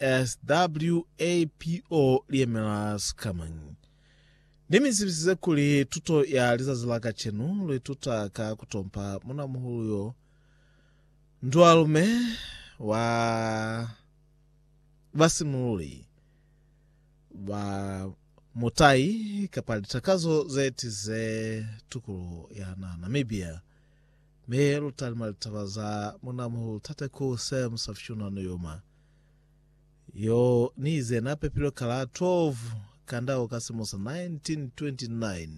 SWAPO liyemela sikamañi? Nimisibisize kuli tuto ya lizazi la kacenu luituta ka kutompa munamuhulu yo ndualume wa basimululi ba mutai kapa litakazo zetize tukuluho yana Namibia. Mi lutalimu ya litaba za munamuhulu Tate Ku Sam sa Fyunwa no yoma. Yo ni ize na pepilwe ka la 12 Kandau ka silimo sa 1929.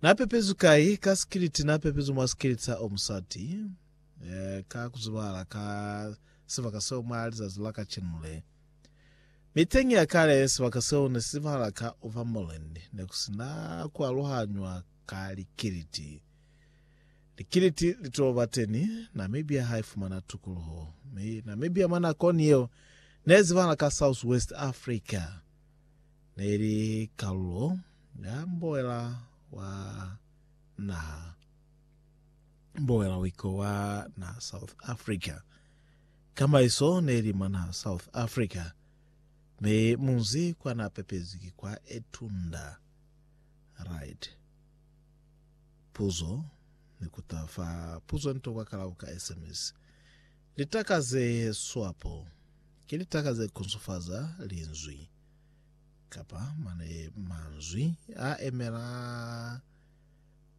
Na pepezwi kai? Ka sikiliti. Na pepezwi mwa sikiliti sa o musati, ka ku zibahala ka sibaka seo mwa lizazi la kacenu le. Mi teñi ya kale, sibaka seo ne si zibahala ka Overmoreland. Ne ku si na ku aluhanywa. ka likiliti. Likiliti li to ba teni, Namibia ha i fumana tukuluho. Mi Namibia mwa nakoni yeo ne zibahala ka South West Africa, ne li kalulo ya mboela wa naha mboela wiko wa naha South Africa. Ka maiso ne li mwa naha South Africa, mi munzi kwa na pepezi ki kwa Etunda. Right. Puzo, Ni kuta fa puzo nto kwa kalabo ka SMS. Litaka ze swapo ki litaka ze kunsufaza linzwi kapa mane manzwi a emela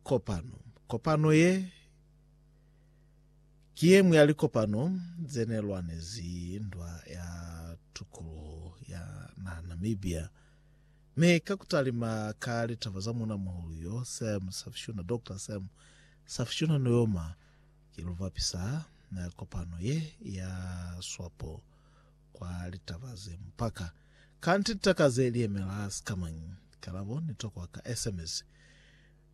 kopano. Kopano ye ki ye ñwi ya likopano ze ne lwanezi ndwa ya tukuluho ya naha Namibia. Mi ka ku talima ka litaba za Muuna Muhulu yo, Sam Safishuna, Doctor Sam Safishuna Nuyoma, ki luvapi sa kopano ye ya swapo kwa litaba ze mupaka. Kanti litaka ze li yemela sikamañi? Kalabo ni tokwa ka sms.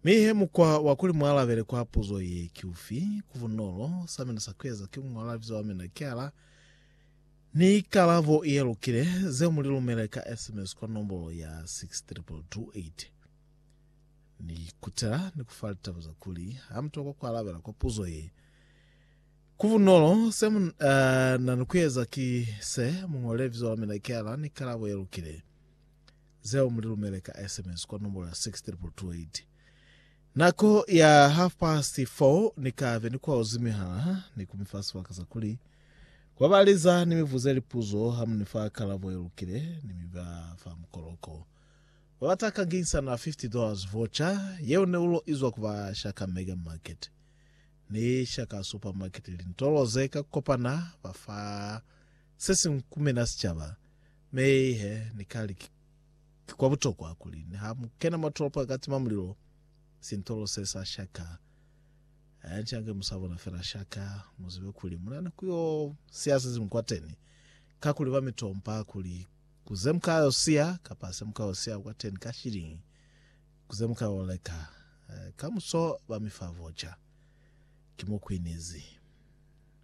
Mi he mukwa wa kuli mu alabele kwa puzo ye ki ufi? Ku bunolo, sa mina sa ku eza ki ku ñola libizo la mina ki ala, Ni ikalabo ye lukile ze mu li lumele ka SMS kwa nombolo ya 62228. Ni kutela ni ku fa litaba za kuli ha mu tokwa ku alabela kwa puzo ye. Ku bunolo, se mu na ni ku eza ki se, mu ñole libizo la mina kiala ni ikalabo ye lukile, zeo mu li lumele ka SMS kwa nombolo ya 63228. Nako ya half past four ni ka be ni kwaozi mihala, ni ku mi fa sibaka sa kuli kwa ba liza ni mi buze lipuzo. Ha mu ni fa kalabo ye lukile, ni mi ba fa mukoloko. Ba bata ka nginisana fifty dollars voucher yeo ne ulo izwa ku ba shaka Mega Market ni shaka Supermarket, lintolo ze ka kopana ba fa se siñwi ku mina sicaba. Mei he, ni ka li ki. Ki kwa butokwa kuli niha mu kena mwa tolopo ya katima mulilo, sintolo se sa shaka, hanchange mu sa bona fela shaka, mu zibe kuli mu na ni ku yo siya se siñwi kwateni. Kakuli ba mi tompa kuli, Ku ze mu ka yo siya, kapa se mu ka yo siya kwateni ka shiliñi, ku ze mu ka yo leka. Kamuso ba mi fa voca. Ki mo ku inizi.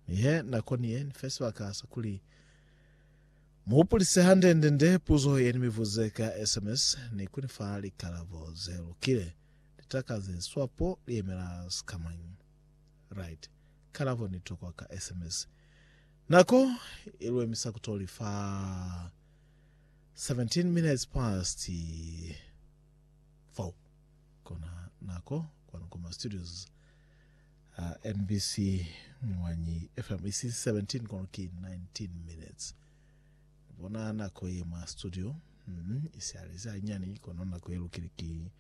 Mi he nako ni ye, ni fe sibaka sa kuli. Mu hupulise hande-nde-nde puzo ye ni mi buze ka sms ni ku ni fa likalabo ze lukile. Litaka ze swapo li yemela sikamañi? Right. Kalabo ni tokwa ka sms. Nako i lu emisa ku to li fa 17 minutes past 4. Kona nako kwanu kwa ma studios. Ha mbc Mwanyi FM isi 17 kono ki 19 minutes. Ni bona nako ye mwa studio mm, isi alezi hanyani kono nako ye lukile ki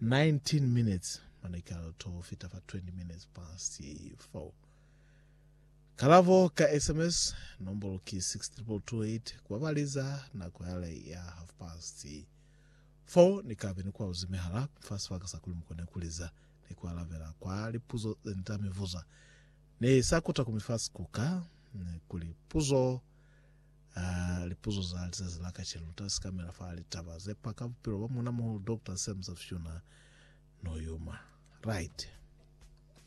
19 minutes mane ka to fita fa 20 minutes past 4. Kalavo ka SMS nombolo ki 62228 kwa baliza nako yale ya half past 4 ni kabe ni kwauzi mihala fa sibaka sa kuli mukone kuliza ni ku alabela kwa lipuzo ze ni ta mi vuza. Ni sa kuta ku mi fa sikuka kuli puzo a lipuzo za lizazi la kacenu lu ta sikamela fa litaba ze pa ka bupilo ba Muuna-muhulu Doctor Sam Safyuna Noyuma. Right.